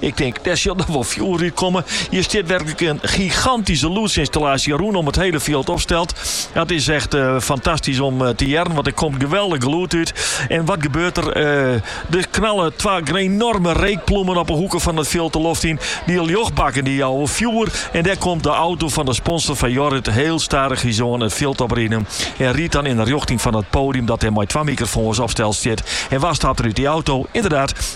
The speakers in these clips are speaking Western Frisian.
Ik tink, dêr sil noch wol fjoer út komme. Hjir stiet werklik in gigantyske lûdsinstallaasje rûn om it hele fjild opsteld. Dat is echt eh, fantastysk om eh, te hearren, want der komt geweldich lûd út. En wat gebeurt der? Der knalle twa enorme reekploemen op 'e hoeken fan it fjild de loft yn. Dy ljochtbakken dy jouwe fjoer. En dêr komt de auto fan de sponsor fan Jorrit hiel stadich hjirsa it fjild opriden. En rydt dan yn de rjochting fan it poadium dat der mei twa mikrofoans opsteld stiet. En wa stapt der út dy auto? Ynderdaad,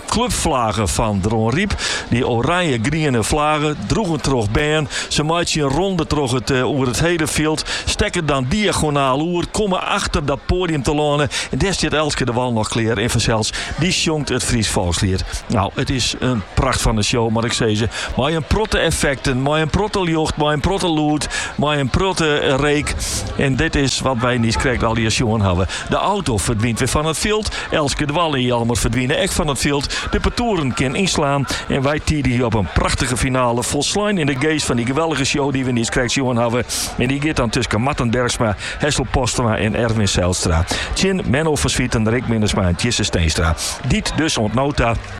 Klubflaggen fan Dronryp, dy oranje-griene flaggen, droegen troch bern. Se meitsje in ronde troch it oer it hele fjild, stekke dan diagonaal oer, komme achter dat poadium telâne en dêr stiet Elske de Wal noch klear. En fansels, dy sjongt it Frysk folksliet. Nou, it is in pracht fan in show, moat ik sizze. Mei in protte effekten, mei in protte ljocht, mei in protte lûd, mei in protte reek. En dit is wat wy niiskrekt allegear sjoen hawwe. De auto ferdwynt wer fan it fjild. Elske de Wal en Jelmer ferdwine ek fan it fjild. De partoeren kinne ynslaan. En wy tidigje op in prachtige finale folslein yn de geest fan dy geweldige show dy't we niiskrekt sjoen hawwe. En dy giet dan tusken Marten Bergsma, Hessel Postema en Erwin Zijlstra. Tsjin Menno van Zwieten, Rick Minnesma en Tjisse Steenstra. Dy't dus oant no ta.